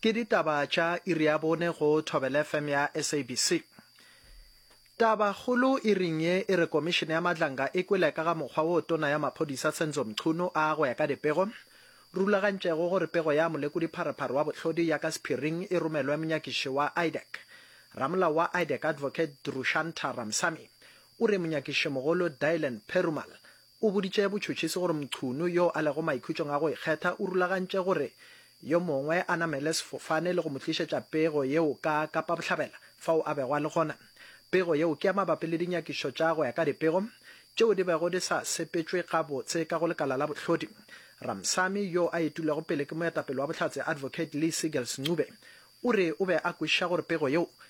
Ke ditaba tša iri ya bone go Thobela FM ya SABC. Taba kgolo iring ye e re komišene ya Madlanga e kwele ka ga mokgwa wo tona ya maphodisa Senzo Mchunu a go ya ka dipego rulagantšego gore pego ya molekodi-pharephare wa bohlodi ya ka sephiring e romelwe monyakiši wa IDEC. Ramolao wa IDEC Advocate Drushantar Ramsamy o re monyakišimogolo Dylan Perumal O boditše botšhotšhisi gore Mchunu, yo a lego maikhutšong a go ikgetha, o rulagantše gore yo mongwe a namele sefofane le go mo tlišetša pego yeo ka Kapa Bohlabela, fao a bego a le gona. Pego yeo ke ya mabapi le dinyakišo tša go ya ka dipego tšeo di bego di sa sepetšwe gabotse ka go lekala la bohlodi. Ramsamy, yo a etilwego pele ke moetapele wa Bohlatse Advocate Lee Seegers Ncube, o re o be a kwešiša gore pego yeo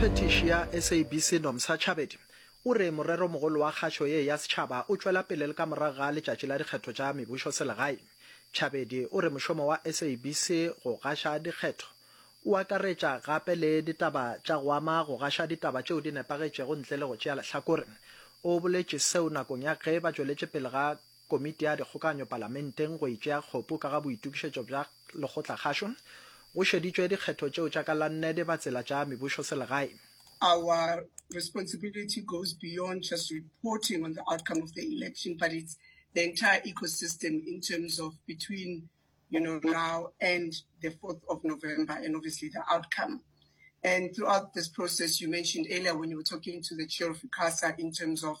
phetiši ya sabc nomsa chabedi o re morero mogolo wa kgašo ye ya setšhaba o tšwela pele le ka morago ga letšatši la dikgetho tša mebušo selegaeng chabedi o re mošomo wa sabc go gaša dikgetho o akaretša gape le ditaba tša go ama go gaša ditaba tšeo di nepagetšego ntle le go tšea lehlakore o boletše seo nakong ya ge ba tšweletše pele ga Komiti ya Dikgokaganyo Palamenteng go e tšea kgopo ka ga boitokišetšo bja lekgotlakgašo, go šeditšwe dikgetho tšeo tša ka la nnede ba tsela tša mebusoselegae. Our responsibility goes beyond just reporting on the outcome of the election but it's the entire ecosystem in terms of between you know now and the 4th of November and obviously the outcome. And throughout this process you mentioned earlier when you were talking to the chair of ICASA in terms of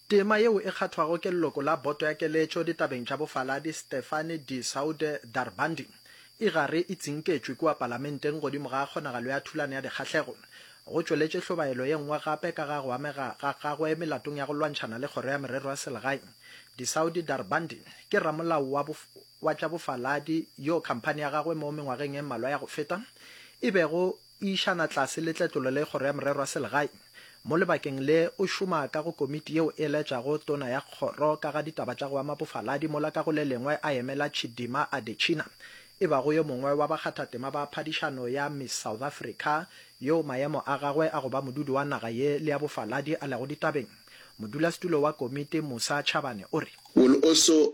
Tema yeo e kgathwago ke leloko la Boto ya Keletšo ditabeng tša bofaladi Stefanie de Soude Darbandi e gare e tsinketšwe kua palamenteng godimo ga kgonagalo ya thulano ya dikgahlego, go tšweletše hlobaelo ye nngwe gape ka ga go amega ga gagwe melatong ya go lwantšhana le Kgoro ya Merero ya Selegae. De Soude Darbandi ke ramolao wa wa tša bofaladi yo khamphani ya gagwe mo mengwageng e mmalwa ya go feta e bego E išana tlase le tletlolo le Kgoro ya Morero wa Selegae. Mo lebakeng le, o šoma ka go komiti yeo e laetšago tona ya kgoro ka ga ditaba tša go ama bofaladi mola ka go le lengwe a emela Chidima Adetshina, e bago yo mongwe wa bakgathatema ba phadišano ya Miss South Africa yoo maemo a gagwe a go ba modudi wa naga ye le ya bofaladi a lego ditabeng. Modulasetulo wa komiti, Musa Chabane, o re. Will also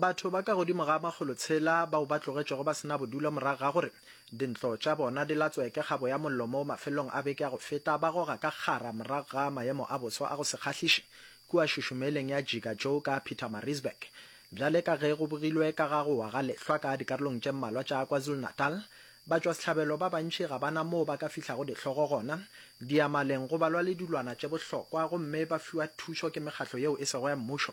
Batho ba ka godimo ga makgolo tshela bao ba tlogetšwego ba se na bodulo morago ga gore dintlo tša bona di latswe ke kgabo ya mollo mo mafelelong a beke ya go feta ba goga ka kgara morago ga maemo a boso a go se kgahliše kua šušumeleng ya Jigajou ka Pietermaritzburg. Bjale ka ge go bogilwe ka ga go wa ga lehlwa ka dikarolong tše mmalwa tša KwaZulu-Natal, batšwasehlabelo ba bantši ga ba na moo ba ka fihlago dihlogo gona diamaleng go balwa le dilwana tše bohlokwa gomme ba fiwa thušo ke mekgatlo yeo e sego ya mmušo.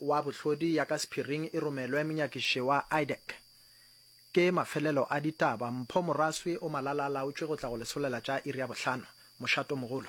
wa bohlodi ya ka sephiring e romelwe monyakiši wa IDEC. Ke mafelelo a ditaba. Mpho Moraswi o malala-a-laotšwe go tla go lesolela tša iri ya bohlano. Mošato mogolo.